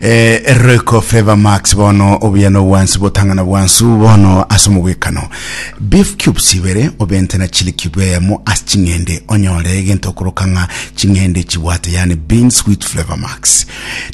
Eroiko Favour Max bono obuya na obwansi botang'ana bwansu bono ase omogwekano. Beef cubes ibere obente na chili cube eyemo ase ching'ende onyore egento okoroka ng'a ching'ende chibwate yaani beans with Flavor Max.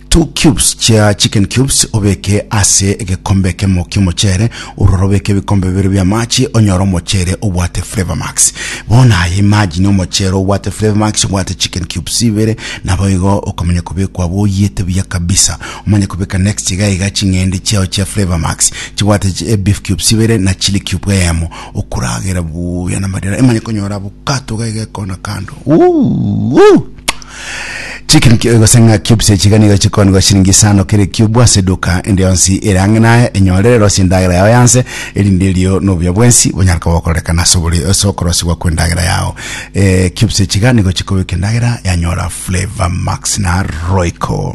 Two cubes chia chicken cubes obeke ase egekombe ekemo ki'omochere Ororo obeke ebikombe bibere bi'amache, onyore omochere obwate Flavour Max. Bono aya imagine omochere obwate Flavour Max, obwate chicken cubes ibere, naboigo okomanya kobekwa abwo oyete buya kabisa. Omanye kobeka next iga iga ching'ende chiao chia Flavour Max chibwate chi- eh, beef cubes ibere na chili cube eyemo, okoragera buya namarira. Imanye konyora avocado iga iga ekona kando. Uuh! Chicken ki- gose ng'a cubes echiga nigo chikoonigwa chiringi isano kera ecube ase eduka ende yonsi ere ang'e naye, enyorere rosia endagera yao y'anse, erinde erio na obuya bwensi bonyare koba gokororekana ase obori- ase okorosiwa kw'endagera yao. Eh, cubes echiga nigo chikobeka endagera yanyora Flavour Max na Royco.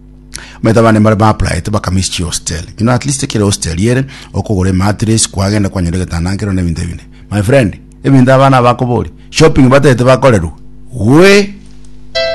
Omanyete abana mbare ba applied bakamisi chi hostel. You know at least ekero hostel ere okogora emattress kwagenda kwanyora egetanda nkero na ebinto ebinde. My friend ebinto abana abakobori shopping batagete bakorerwa. We!